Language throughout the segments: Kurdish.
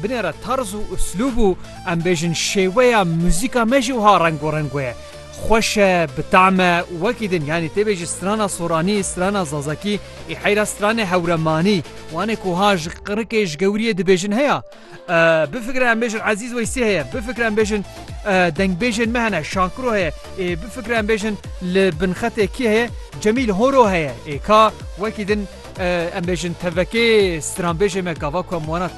Binê re tarz û uslûb û em bêjin şêweya muzîka me jî wiha rengorengo ye. Xweş e, bi tam e û wekî din yanî tê bêjî strana soranî, strana zazakî ê heyra stranê hewremanî wanê ku wiha ji qirikê ji gewiriyê dibêjin heye. Bifikre em bêjin Ezîz Weysî heye, bifikre em bêjin dengbêjên me hene Şakiro heye ê bifikre em bêjin li binxetê kî heye Cemîl Horo heye ê ka wekî din em bêjin tevekê stranbêjê me gava ku em wana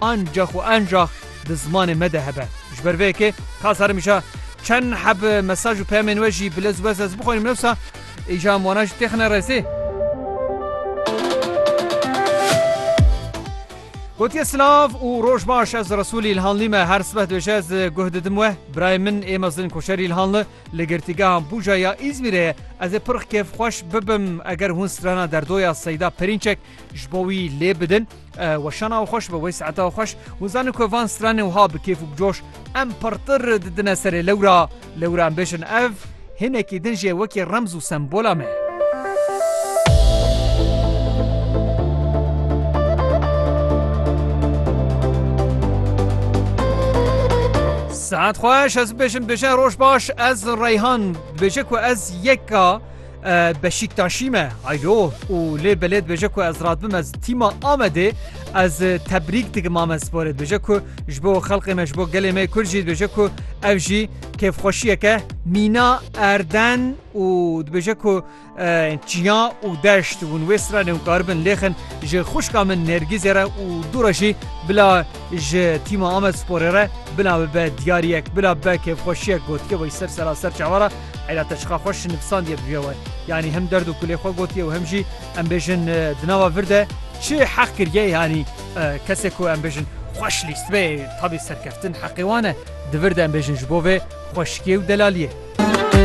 Ancax û enjax di zimanê me de hebe. Ji ber vê yekê ka sar im îja çend heb mesaj û peyamên we jî bi lez û bez ez bixwînim lewsa îja em wana jî têxine rezê. Gotiye silav û roj baş ez Resûlî Îlhanlî me her sibeh dibêje ez guh didim we birayê min ê mezin koçerî Îlhanli li girtîgehan Bûca ya Îzmîrê ye ez ê pirx kêfxweş bibim eger hûn strana derdoya Seyda Perînçek ji bo wî lê bidin Weşana û xweş be wey saeta xweş û zanê ku van stranê wiha bi kêf û bi coş em pirtir didine serê lewra. Lewra em bêjin ev hinekî din jê wekî remz û sembola me. Saet xweş ez bêjin bêje roj baş ez Reyhan bêje ku ez yeka Beşîktaşî me aylo û lê belê dibêje ku ez radbim ez tîma Amedê ez tebrîk dikim ame sporê dibêje ku ji bo xelqê me ji bo gelê me Kurd jî dibêje ku ev jî kêfxweşiyeke mîna erden û dibêje ku çiya û deşt hûn wê sira ne hûn karibin lêxin ji xuşka min nêrgîzê re û dû re jî bila ji tîma Amed sporê re bila bibe diyariyek bila bibe kêfxweşiyek gotiye bo ser sera ser çawa re Eyda te çiqa xweş nivîsandiye bi vî we. Yanî hem derd û kulê xwe gotiye û hem jî em bêjin di nava vir de çi heq kiriye yanî kesê ku em bêjin xweş lîst be tabî serkeftin heqê wan e di vir de em bêjin ji bo vê xweşikiyê û delaliyê.